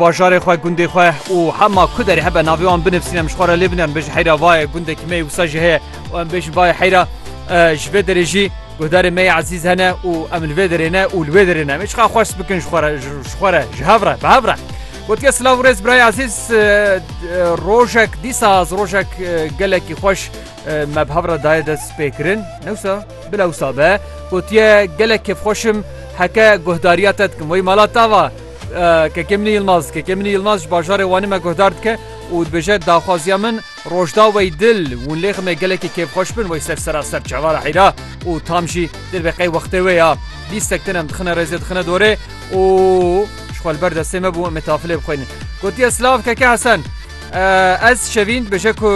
bajarê xwe gundê xwe û hema ku derê hebe navê wan binivîsîn em ji xwe re lê binin bêjin heyra vayê gundekî me wisa jî heye û em bêjin vayê heyra ji vê derê jî guhdarê me yê ezîz hene û em li vê derê ne û li vê derê ne mêçqa xweş bikin ji xwe re ji xwe re ji hev re bi hev re Gotiye silav rêz biraya ezîz rojek dîsa ez rojek gelekî xweş me bi hev re dayê dest pêkirin newsa bila wisa be gotiye gelek kêfxweşim heke guhdariya te dikim wê mala tava Kekemînî Yilmaz Kekemînî Yilmaz ji bajarê Wanê me guhdar dike û dibêje daxwaziya min rojda wey dil winlêxi me gelekî kêfxweş bin wey ser seraser çavar a heyra û tam jî dil be qey wextê wê ya bîstek tinem dixine rêzê dixine dorê û ji xwe li ber destê me bû em ê tafilê bixwînin gotiye silav keke hesen ez şevîn dibêje ku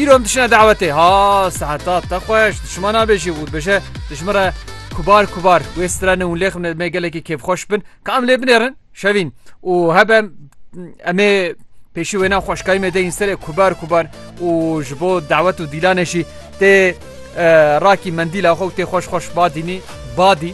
îro em dişine dawetê ha seheta te xweş dişima nabêjî û dibêje dijmire kubar kubar wê strene winlêxi me gelekî kêfxweş bin Ka em lê binêrin şevîn û hebe em ê pêşî wêna xweşkayî me deyîn serê kubar kubar û ji bo dawet û dîlanê jî tê rakî mendîla xwe û tê xweş xweş badînî badî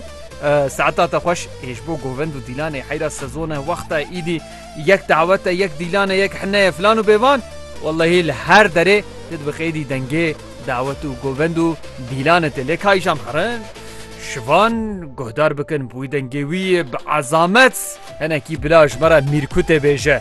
saeta te xweş ê ji bo govend û dîlanê heyra sezone wexta îdî Yek dawet e, yek dîlan e, yek hine ye filan û bêvan, wellehî li her derê tu dibi qeydî dengê dawet û govend û dîlanê tê lê ka îşam herin şivan guhdar bikin bi wî dengê wî bi ezamet hinekî bila ji me re mîrkûtê bêje.